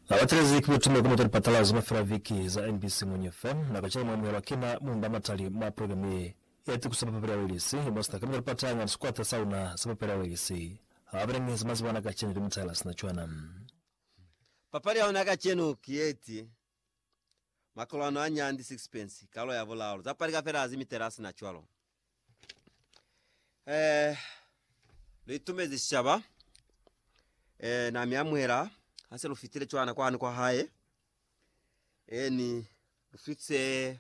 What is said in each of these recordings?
Na batelezi ki butume kuli mutali patala zona fela viki za mbc munyi fe. Na kacela mwa amuhelwa ki na munda a matali mwa program ye ya tikusa ba papeli ya Welisi, mwa sina kamita lipata nga ni sikwata sa una sa papeli ya Welisi. Ha ba ni zamazi bana kacenu ki mutala sina cwana. Papali ya una kacenu ki yeti Makolwano a nyandi, sixpence, kalo ya bulalo, za palika fela hazi mitela asina cwalo. Eh, lu itumezi sicaba. Eh, na mi amuhela, hase lu fitile cwana kwani kwa hae. Eni, lu fitse,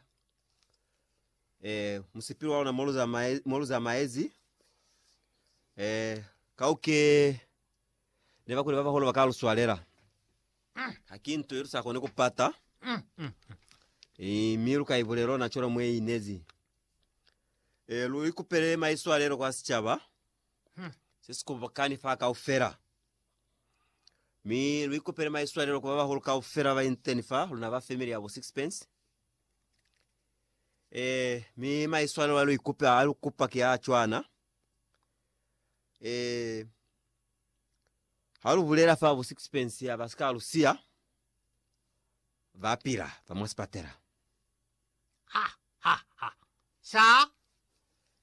eh, musipili wa luna molu zamae- molu zamaezi. Eh, kauke, ne bakuli ba baholo ba ka lu swalela. Ha ki nto ye lu sa koni ku pata, mi lu ka i bulela ona cwalo mwe i inezi. Lu ikupele maiswalelo kwa sicaba se si kobokani fa kaufela, mi lu ikupele maiswalelo ku ba bahulu kaufela ba ba iteñi fa luna ba family ya bo Sixpence. Mi maiswalelo a lu ikupa, a lu kupa ki a cwana. Ha lu bulela fa bu sixpence ya ba si ka lu siya, ba pila fa mwa sipatela. Ha, ha, ha. Sha?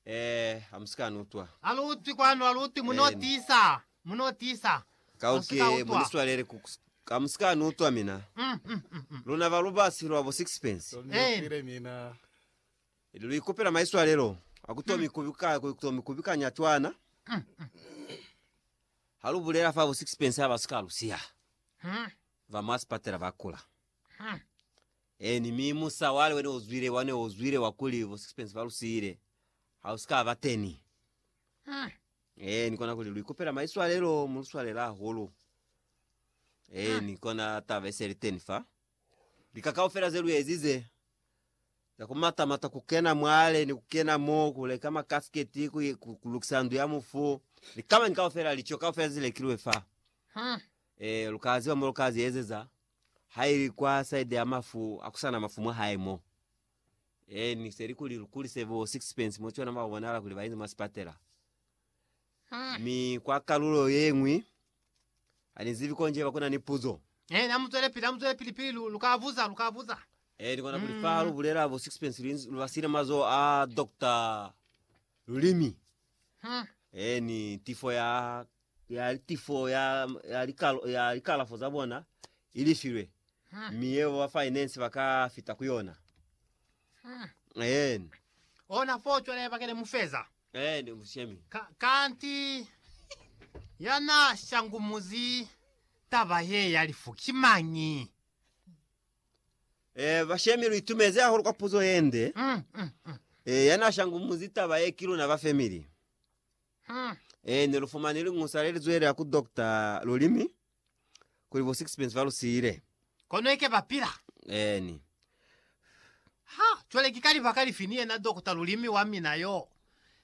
Eh, ha mu si ka ni utwa. Ha lu utwi kwanu, ha lu utwi, mu no Eni. tiisa, mu no tiisa. Ka Mu si uke, ka mu utwa. ni swalele ku, ka mu si ka ni utwa mina. Mm, mm, mm, mm. Luna ba lubasi lwa bu sixpence. Tonifile mina. Ili luikupela maiswalelo akutomi kubika kutomi kubikanya twana halubulela fabo sixpence haba sika lusiha va masipatela bakula eni mi musa wale wene uzwile wane uzwile wakuli bo sixpence balusile hausika bateni eni kona kuli luikupela maiswalelo muluswalela hulu eni kona taba esele teni fa likakaufela zeluezize Yakumatamata kukena mwale ni kukena mo, kuleka makasiketi, ku, ku, kulukisa ndu ya mufu, ni kamanyi kaufela, lico kaufela zilekilwe fa. Hmm. E, lukaziba mo lukazi ezeza, haili kwa side ya mafu, akusana mafu mwa hae mo. E, ni seli kuli lukulise bo sixpence mo cona mwa kubonala kuli bainzi mwa sipatela. Hmm. Mi kwa kalulo yeñwi, Ani zibi konje bakuna ni puzo. Eh, na muzwele pili, na muzwele pili pili lu, lu ka buza, lu ka buza. Eh, ni kona kuli fa mm. lu bulela bo sixpence lu, lu basile mazo a Dr. Lulimi. Hmm. Eh, ni tifo ya ya tifo ya ya likalo ya likalafo za bona ilifilwe. Hmm. Miye wa finance baka fita kuyona. Hmm. Eni. Ona fo cwale bakele mufeza. Eni mushemi. Ka, kanti yana shangumuzi taba ye ya lifu kimangi. Eh, bashemi lu itumeze hahulu kwa puzo yende. Mm, mm, mm. Eh, yana shangumuzi taba ye kiluna ba family. Mm. Eh, ne lu fumane lingusa le lizwele ya ku doctor lulimi. Kuli bo sixpence ba lu siile. Kono ike ba pila. Eeni. Ha, cwale ki ka libaka lifi ni yena Dokota Lulimi wa mina yo,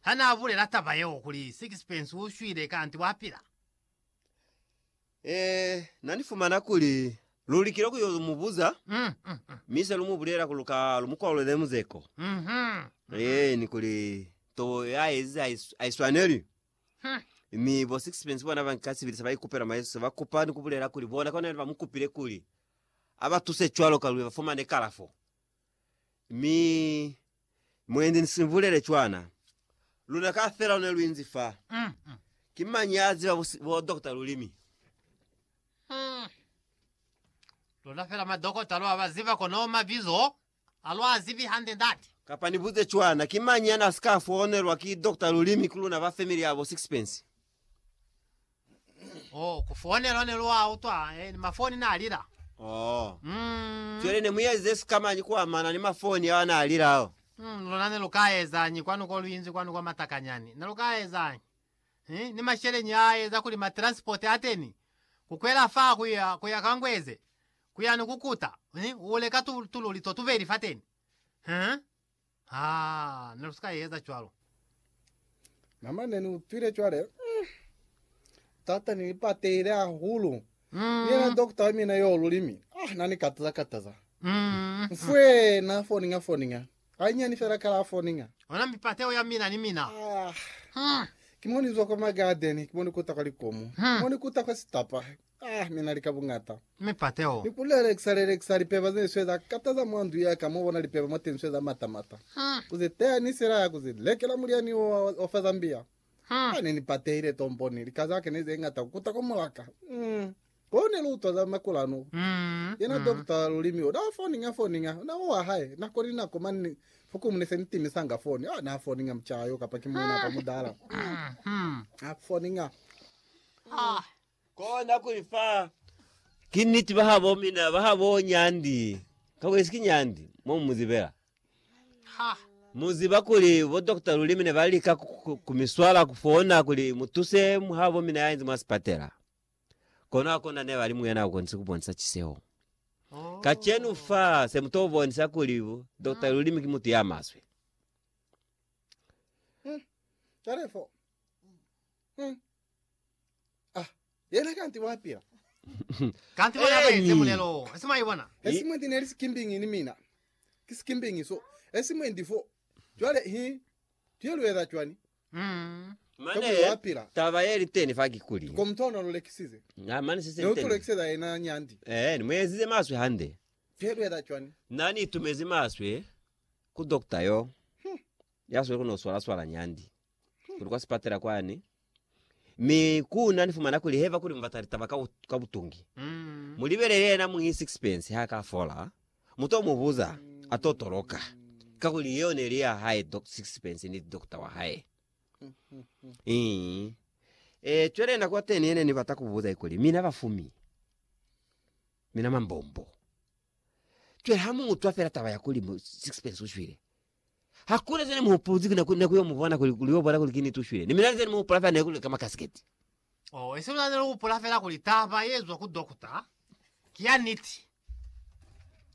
ha na bulela taba yeo kuli sixpence u shwile kanti wa pila? Eh, na ni fumana kuli lu likile ku yo mu buza, Mm, mm, mm. mi se lu mu bulela kuli lu ka lu mu kwalulele muzeko. Mhm. Eeni, kuli tobo ya ezize ha i- ha i swaneli. Mi bo Sixpence bona ba nka sibili se ba ikupela mwa Yesu, se ba kupa ni ku bulela kuli bona kona ne ba mu kupile kuli a ba tuse cwalo ka luli ba fumane kalafo. Mi mwendi ni si bulele cwana, luna kaufela lu ne lu inzi fa. Ki mañi ya ziba bo, si- bo dokota lulimi? Luna fela madokota lwa ba ziba kono mabizo Ha lwa zibi hande, Ndate. Kapa ni buze cwana, ki mañi yana sika foonelwa ki Doctor Lulimi ku luna ba family ya bo Sixpence? Oh, ku foonelwa ne lwa utwa eh, ni mafoni na lila. Oh. Mm. Cwale ne mu eze sika mañi ku amana ni mafoni ao ana lila ao? Mm, luna ne lu ka ezañi kwanu ko lu inzi kwanu kwa Matakanyani? Ne lu ka ezañi? Eh, ni masheleñi a eza kuli ma transport ateni, ku kwela fa kuya, kuya Kangweze, Ku ya ni ku kuta, mi u leka tu, tululi to tubeli fateni. Huh? Ha, ne lu si ka eza cwalo. Mama, ne ni utwile cwale, mm, tata ni ipatehile hahulu. Mm. Ni yena dokota wa mina yo lulimi. Ah, na ni kataza kataza. Mm. Mfwee, na foninga foninga. Hainyani fela kalafo ni nga. Ona mipateo ya mina ni mina. Ah. Hmm. Ki mo ni zwa kwa magadeni, ki mo ni kuta kwa likomu. Hmm. Mo ni kuta kwa sitapa. Ah, mina li ka bungata. Mipateo. Ni ku lelekisa lelekisa lipeba ze ni sweza kata za mwa ndu ya ka, mo bona lipeba mwa teñi sweza mata mata. Hmm. Ku ze teya ni silaya, ku ze lekela mulyani wo wa, wa fa Zambia. Hmm. Ah, ne ni patehile tombo ni lika za ka ne ze ngata ku kuta kwa mulaka. Hmm. Ko ne lu utwa za makulanu. Yena Doctor Lulimi o na foniña foniña na wa hae nako ni nako mani fokumu ne se ni timisanga foni. Ha na foniña mucaa yo kapa ki muuna kapa mudala. Ha foniña. Ko na ku li fa. Ki niti ba ha bo mina ba ha bo nyandi. Ka kuli si ki nyandi mo mu mu zibela. Mu ziba kuli bo Doctor Lulimi ne ba lika ku mi swala ku fona kuli mu tuse ha bo mina ya inzi mwa sipatela. Kono hakuna nebali muyena ukonise kubonisa ciseho. Kacenu fa, semutobonisa kuli Dokota Lulimi ki mutu yamaswe. Talefo. Hmm. Ah, yena kanti wapila. Kanti bona Eni. baenze mulelo wo. Ese mwaibona? Esimwe ndi neli sikimbingi ni mina. Ki sikimbingi so. Esimwe ndi fo. Cwale hi tuyelweza cwani? Mane taba ye li teni fa kikuli, na mane se se li teni, eh, ni mu ezize maswe hande. Na ni itumezi maswe ku dokta yo, ya sweli ku no swala swala nyandi, kuli kwa sipatela kwani, mi ku na ni fumana kuli heva kuli mu bata litaba ka, ka butungi. Mu libelele yena muñi sixpence ha ka fola, Mu to mu buza, a to toloka, kakuli yeo ne li ya hae, Doc Sixpence ni dokta wa hae. Ii. E, cwale nako ya teni yene ni bata ku buza ikuli, Mina bafumi, mina mambombo, cwale ha mu utwa fela taba ya kuli Sixpence u shwile, Hakuna zeni muhupuluzi kina kuli neku yo mubona kuli kuli yo bona kuli kini tushwile. Ni mina zeni muhupula fela neku leka makasiketi. Oh, isi mina neli hupula fela kuli taba ye zwa ku dokota ki ya niti.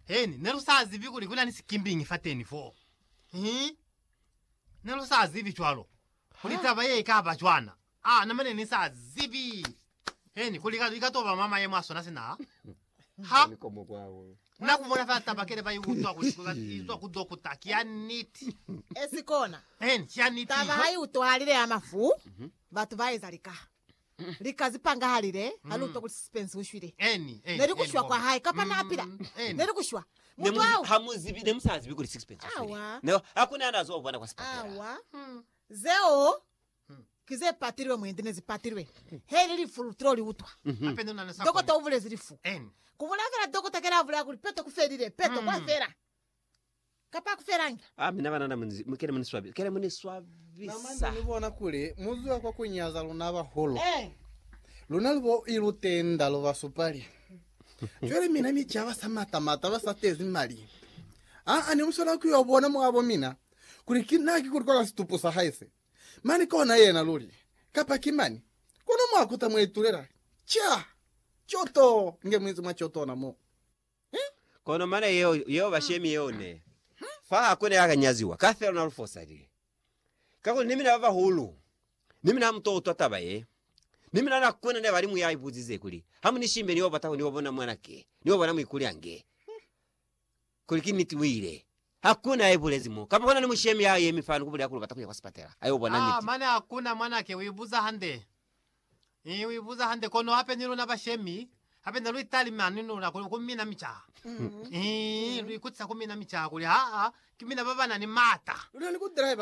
Heni, nelu sa zibi kuli kuna ni sikimbingi fateni fo. Hi. Nelu sa zibi cwalo. Kuli taba ye ikaba cwana. Aa, na mane ni sa zibi heni kuli li ka to ba mwa mayemo a sona sina ha na ku bona fela taba kele ba i utwa kuli ba i utwa ku dokota. Ki ya niti. E si kona. Heni, ki ya niti. Taba ha i utwahalile ya mafu, batu ba eza lika. Lika zi pangahalile ha li utwa kuli Spencer u shwile. Heni, heni. Ne li ku shwa kwa hae, kapa na pila. Heni. Ne li ku shwa. Ne Mutu mu, au. ha mu zibi, ne mu sa zibi kuli Sixpence u shwile. Awa. Ne, ha ku na na zo u bona kwa sipatela. Awa. Zeo Ki ze patilwe mwendi ne zi patilwe. He ili lifu lu tilo li utwa. Dokota u bulezi lifu. Ku bulaya kela dokota kela a bulaya kuli, Peto ku felile. Peto, kwa fela. Kapa a ku felangi. Ah, mina banana mu kele mu ni swabisa. Kele mu ni swabisa. Na mane ni bona kuli mu zwa kwa ku nyaza luna bahulu. Luna lu bo i lu tenda, lu ba supali. Cwale mina ni ca ba sa mata mata, ba sa tezi mali. Ah, ah, ne mu swanela ku yo bona mwa bo mina kuli ki na ki kuli kwa ka situpu sa hae se. Mani kona yena luli, kapa ki mani, kono mwa kuta mwa itulela, ca, co to nge muinzi mwa co tona mo. He? Kono mana yeo, yeo ba shemi yeo ne. Fa ha kona ya ka nyaziwa, ka fela na lu fosalile. Kakuli ni mina ba bahulu, ni mina ha mu to utwa taba ye, ni mina na kona ne ba li mu ya ipuzize kuli, Ha mu ni shimbe, ni yo bata ku ni yo bona mwana ke, ni yo bona muikuli ange. Kuli ki niti wile. Hakuna ya ibulezi mo. Kapa kona ni mushemi ya yemi fani ku bulela kuli ubata kuya kwa sipatela. Ayo bona niti. Ah, mane hakuna, mwanake. Uibuza hande. Ii, uibuza hande. Kono hape ni luna bashemi, hape ne luitalime ani ni luna kuli ku mina micaha. Ii, luikutisa ku mina micaha kuli, Haa, ki mina ba banani mata.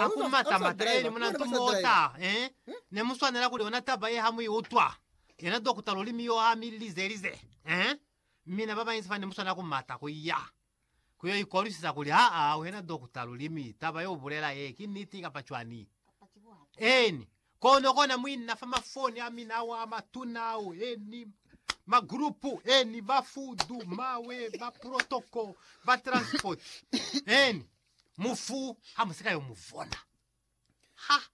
Haku mata mata. Ee, ni muna ntu mota. Ee, ne muswanela kuli yona taba ye ha muiutwa. Yena dokota lulimi yo ha mi lize lize. Ee. Mina babañwi bane muswana kumata kuya kuyo ikolwisisa kuli, Haa, wena dokota, lulimi taba yeubulela ye ki niti kapa cwani? Eeni. Kono kona muina fa mafoni amina ao amatuna ao, eeni, magrupu, eeni, ba fudu, mawe, ba protoko, ba transpoti, eeni, mufu hamusika yomuvona. Ha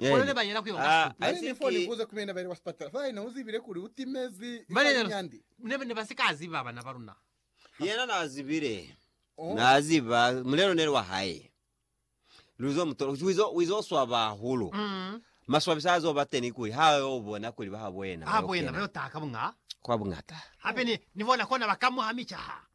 Kole ba yela ku yo nga suku. Nani ni fo ni buza kumina ba ile kwa sipatala fa ina u zibile kuli u timezi Ba ka yela linyandi. Ne, ne ba si ka ziba bana ba luna. Yena na zibile. Oh. Na ziba mulelo neli wa hae. Lu zo mutola. Kuchi wizo, wizo swaba hahulu. Mm. Maswabisa azo ba teni kuli ha yo bona kuli ba habo yena. Habo yena ba yo taha ka bunga. Kwa bungata. Hape ni, ni bona kona ba ka muha micaha.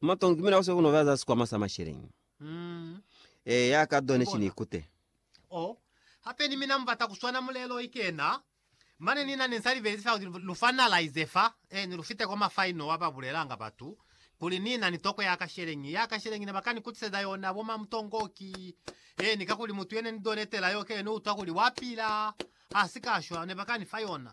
Matongi ki mina ku se ku no ba za sikwama sa masheleñi. Eya, ka zone ki ni kute. Oh, hape ni mina mu bata ku swana mulelo i kena. Mane nina ne nsa libelezi fela kuli lu finalize fa, eh, ni lu fite kwa ma final wa ba bulelanga batu kuli ni na ni toko ya kasheleñi. Ya kasheleñi ne ba ka ni kutiseza yona bo mamutongoki, eh, ni kakuli mutu ye ne ni donetela yo ke yo ni utwa kuli wa pila, ha si ka shwa, ne ba ka ni fa yona.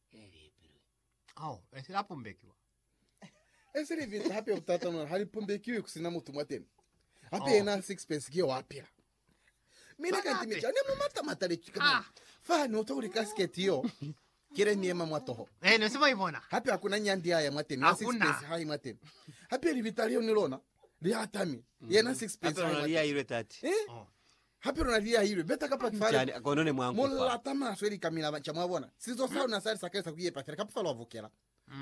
Elipilwi kao esi la pumbekiwa. Esi li vita hape ku tatanula ha li pumbekiwi ku sina mutu mwateni. Hape yena a sixpence ki yo a pila. Mina kanti mi ca ne mu mata mataletwi ka mona. Fa ni utwa kuli casket yo ki le ni ema mwa toho. Eh, ne si mwa ibona. Hape hakuna ni yandi ya ya mwateni, na Hakuna. sixpence ha i mwateni. Hape libita leo ni lona li hatami, yena sixpence ha i Apelona mwateni. liyailwe tati. Eh? Oh. Hape luna liyailwe beta kapa Ani kifale cani kono ne mwa nkupa? mulata maswe likamila banca mwa bona. Sizo sa luna sali sakalisa ku yepa fela kapa fa lwa vukela.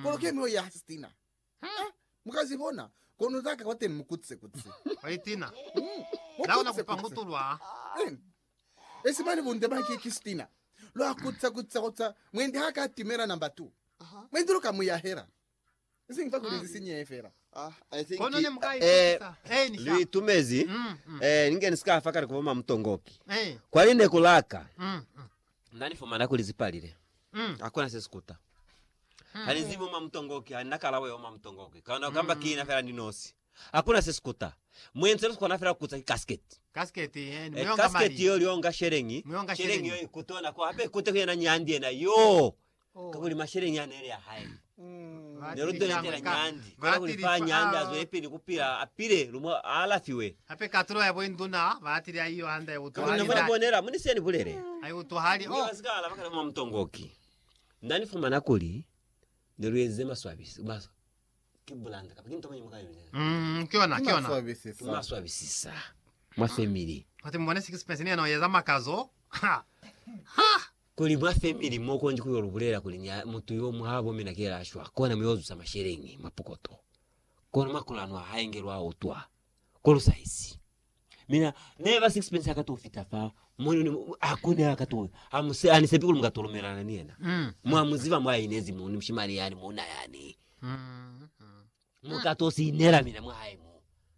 Kono ke miloyi ya ha Stina. Ha mu ka zi bona, kono za ka kwateni mu kutse kutse. Hoi Tina, Mu la una kutse kupa kutse. ngutulwa. Eni. Esi mane bunde ba ki ki Stina. Lwa kutse kutse kutse. Mwendi ha ka timela number two. Mwendi lu ka mu yahela. Nsi nfa kuli zisinyeye fela. Ah, I think Kono ne mu ka eh, ikutisa. Eh, ni sha. lu itumezi Mm, mm. eh, ni nge ni si ka fa kale ku boma mutongoki Eh, kwa line ku laka mm, mm. na ni fumana kuli zi palile Mm. ha kuna se si kuta ha ni zibi uma mutongoki ha ni na kalabo ya uma mutongoki kana kamba ki na fela ni nosi ha kuna se si kuta mwenze lu kona fela ku kutsa ki casket Kasket, eh, ni eh, muyonga casket mali. yo lionga shelengi Muyonga shelengi shelengi. yo ikutona ko hape ikute ku yena nyandi yena yo Kakuli masheleñi a neli a hae. Ne lu tweletela Nyandi. Kono kuli fa Nyandi a zwelipili ku pila, a pile, lu mu alafiwe. Hape katulo ya boinduna ba atile a iyo handa ya butuhali. Kakuli ne mu na bonela, mu ni se ni bulele. A i butuhali. Oh! Mwi ba si ka alaba kana mwa mutongoki. Na ni fumana kuli ne lu enzize maswabisi, maswa. Umm, ki yona, ki yona. Ki maswabisisa mwa family. Kuti mubone sixpence ni yena uyeza makazo. Ha! Ha! Kuli mwa family mo kondi kuyo lubulela kuli ni mutu yo mwa bo mina kela ashwa kona muyozusa masheleñi mwa pokoto. Kono makulano a hae ngelwa utwa. Kolosaizi. Mina neba sixpence aka to fita fa moni ni akune aka to amuse ani sepi kuli mukato lumelana ni yena. Mm. Mwa muziba mwa inezi muni mshimani yani muna yani. Mm. Mukato sinela mina mwa hae.